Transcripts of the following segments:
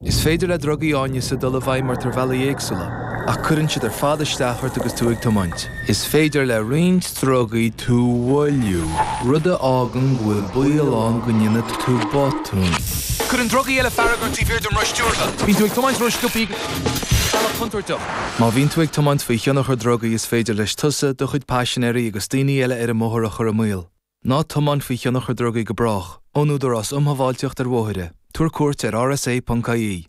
Is féidir le drugaí áineasa dul i bhfeidhm ort ar bhealaí éagsúla, ach cuireann siad ar fad isteach ort agus tú ag tiomáint. Is féidir le roinnt drugaí tú mhoilliú, rud a fhágann go bhfuil baol ann go ndéanfaidh tú botúin. Cuireann drugaí eile fearg ort taobh thiar den roth stiúrtha, bíonn tú ag tiomáint ró-sciobtha ar bhealach contúirteach. Má bhíonn tú ag tiomáint faoi thionchar drugaí is féidir leis tusa, do chuid paisinéirí agus daoine eile ar an mbóthar a chur i mbaol. Ná tiomáin faoi thionchar drugaí go brách. Ón Údarás Um Shábháilteacht ar Bhóithre. Tabhair cuairt ar rsa.ie.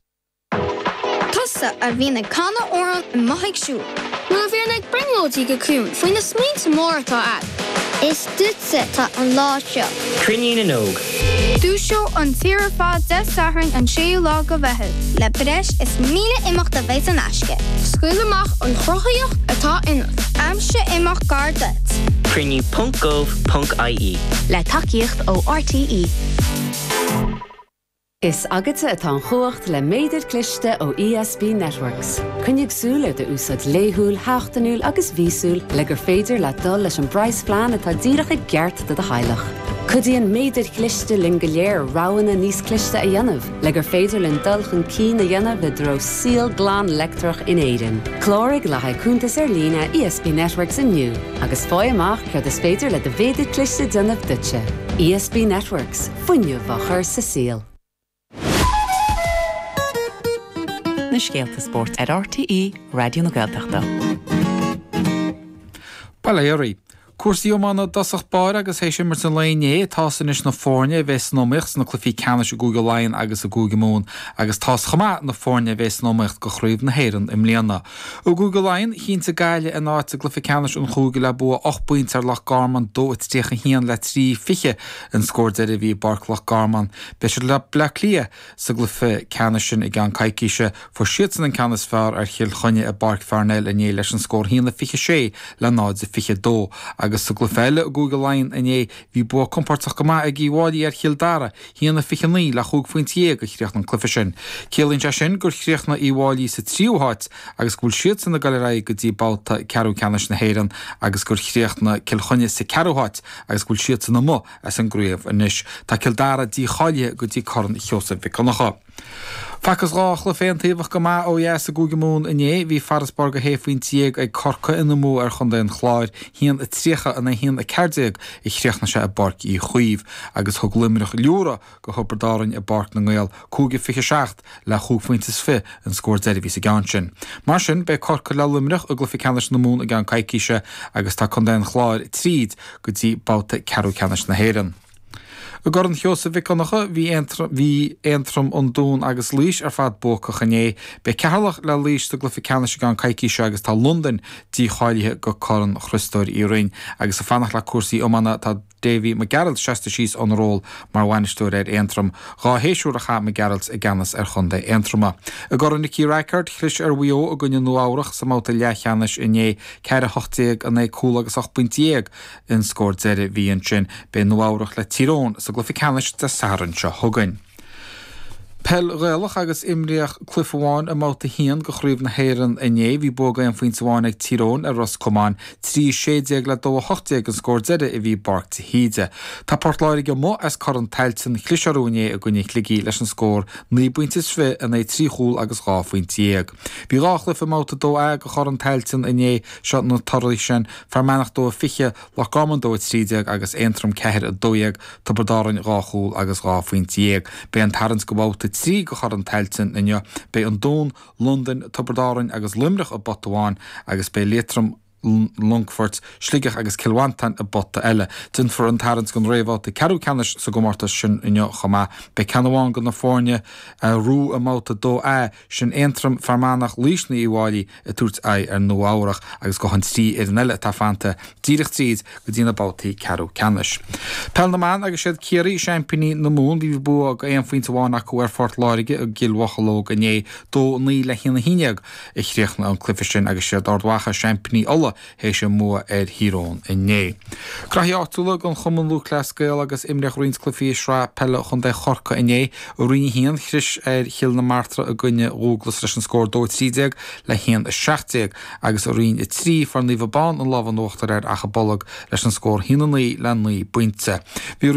Tusa a bhíonn ag canadh amhrán i mbealach scoile. Nó a bhíonn ag brionglóidí go ciúin faoi na smaointe móra atá agat. Is duitse atá an lá seo. Cruinniú na nÓg Dúiseoidh an tír ar fad Dé Sathairn an 6ú lá de Mheitheamh. Le breis is 1,000 imeacht a bheidh in aisce. Scaoil amach an chruthaíocht atá ionat. Aimsigh imeacht gar duit. Cruinniú ponc gov ponc ie. Le tacaíocht ó RTÉ. Is agatsa atá an chumhacht le méadar cliste ó ESB Networks. Coinnigh súil ar do úsáid laethúil, sheachtainiúil agus mhíosúil le gur féidir leat dul leis an bpraghasphlean atá díreach i gceart do do theaghlach. Cuidíonn méadair chliste linn go léir roghanna níos cliste a dhéanamh le gur féidir linn dul chun cinn a dhéanamh i dtreo saol glan leictreach in Éirinn. Cláraigh le haghaidh cuntas ar líne ESB Networks inniu agus faigh amach céard is féidir le do mhéadar cliste déanamh duitse. ESB Networks, fuinneamh á chur sa saol. Na scéalta spóirt ar RTÉ Raidió na Gaeltachta. Bail ó Dhia oraibh. Cúrsaí iomána i dtosach báire agus théis imirt an lae inné, tá's anois na foirne a bheidh san iomaíocht sna cluichí ceannais i gCúige Laighean agus i gCúige Mumhan agus tá's chomh maith na foirne a bheidh san iomaíocht do Chraobh na hÉireann i mbliana. I gCúige Laighean, chinntigh Gaillimh a n-áit sa gcluiche ceannais an chúige le bua ocht bpointe ar Loch Garman, 2-31 le 3-20 an scór deiridh a bhí i bPáirc Loch Garman. Beidh siad le Bleá Cliath sa gcluiche ceannais sin i gceann coicíse. Fuair siadsan an ceann is fearr ar Chill Chainnigh i bPáirc Pharnell inné leis an scór 1-26 le 0 a 22 agus sa gcluiche eile i gCúige Laighean inné bhí bua compordach go maith ag Uíbh Fháilí ar Chill Dara, 1-29 le chúig phointe dhéag a chríochnaigh an cluiche sin. Ciallaíonn sé sin gur chríochnaigh Uíbh Fháilí sa tríú háit agus go bhfuil siadsan ag dul ar aghaidh go dtí babhta ceathrú ceannais na hÉireann agus gur chríochnaigh Cill Chainnigh sa gceathrú háit agus go bhfuil siadsan amuigh as an gcraobh anois. Tá Cill Dara dícháilithe go dtí Corn Sheosaimh Mhic Dhonncha. Facthas dhá chluiche aontaobhacha go maith ó dheas i gCúige Mumhan inné. Bhí farasbarr de shé phointe dhéag ag Corcaigh ina mbua ar Chontae an Chláir, haon a tríocha in aghaidh a haon a ceathair déag a chríochnaigh sé i bPáirc Uí Chaoimh, agus thug Luimneach liúradh, go Thiobraid Árainn i bPáirc na nGael, cúig 27 le chúig phointe is fiche an scór deiridh a bhí sa gceann sin. Mar sin, beidh Corcaigh le Luimneach i gcluiche ceannais na Mumhan i gceann coicíse agus tá contae an Chláir tríd go dtí babhta ceathrú ceannais na hÉireann. I gCorn Sheosaimh Mhic Dhonncha, bhí Aontroim, an Dún agus Laois ar fad buacach inné. Beidh Ceatharlach le Laois sa gcluiche ceannais i gceann coicíse agus tá Londain dícháilithe go Corn Chriostóir Uí Rinn. Agus ag fanacht le cúrsaí iomána, tá. Davy Mac Gearailt seasta síos óna ról mar bhainisteoir ar Aontroim. Dhá shéisiúr a chaith Mac Gearailt i gceannas ar chontae Aontroma. I gCorn Nicky Rackard, chlis ar Mhaigh Eo i gcoinne Nua Eabhrach sa mbabhta leathcheannais inné, ceathair a hocht déag in aghaidh cúl agus ocht bpointe dhéag an scór deiridh a bhí ansin, beidh Nua Eabhrach le Tír Eoghain sa gcluiche ceannais Dé Sathairn seo chugainn. Peil Ghaelach agus imríodh cluife amháin i mbabhta a haon de Chraobh na hÉireann inné. Bhí bua go aon phoinnte amháin ag Tír Eoghain ar Ros Comáin, 3 16 le 2 18 an scór deiridh a bhí i bPáirc de hÍde. Tá Port Láirge amuigh as Corn Tailteann chlis orthu inné i gcoinne Shligigh leis an scór naoi bpoinnte is fiche in aghaidh trí chúl agus dhá phoinnte dhéag. Bhí dhá chluife i mbabhta 2A de Chorn Tailteann inné seo na torthaí sin, Fear Manach 2 20, Loch Garman 2, 13 agus Aontroim 4, 12, Tiobraid Árainn dhá chúl agus dhá phointe dhéag. Beidh an tarraingt go bhabhta 3 go Chorn Tailteann inniu. Beidh an Dún, Londain, Tiobraid Árainn agus Luimneach i bpota amháin agus beidh Liatroim, Longfort, Sligeach agus Cill Mhantáin i bpota eile. Déanfar an tarraingt don réamhbhabhta ceathrú ceannais sa gcomórtas sin inniu chomh maith. Beidh ceann amháin de na foirne a bhuaigh i mbabhta 2A. Sin Aontroim, Fear Manach, Laois nó Uíbh Fhailí ag tabhairt aghaidh ar Nua Eabhrach agus gabhfaidh an trí fhoireann eile atá fanta díreach tríd go dtí na babhtaí ceathrú ceannais. Peil na mBan agus siad Ciarraí seaimpíní na Mumhan bhí bua go aon phointe amháin acu ar Phort Láirge i gCill Mhocheallóg inné, dó naoi le haon a haon déag a chríochnaigh an cluiche sin agus siad Ard Mhacha seaimpíní Uladh théis a mbua ar Thír Eoghain inné. Graithí áitiúla den Chumann Lúthchleas Gael agus imríodh roinnt cluifí i Sraith Peile Chontae Chorcaí inné. I Roinn 1, chlis ar Chill na Martra i gcoinne Dhúglais leis an scór 2 13 le 1 17 agus i Roinn 3, fuair Naomh Abán an lámh in uachtar ar Achadh Bolg leis an scór 1 9 le 9 bpointe. Bhí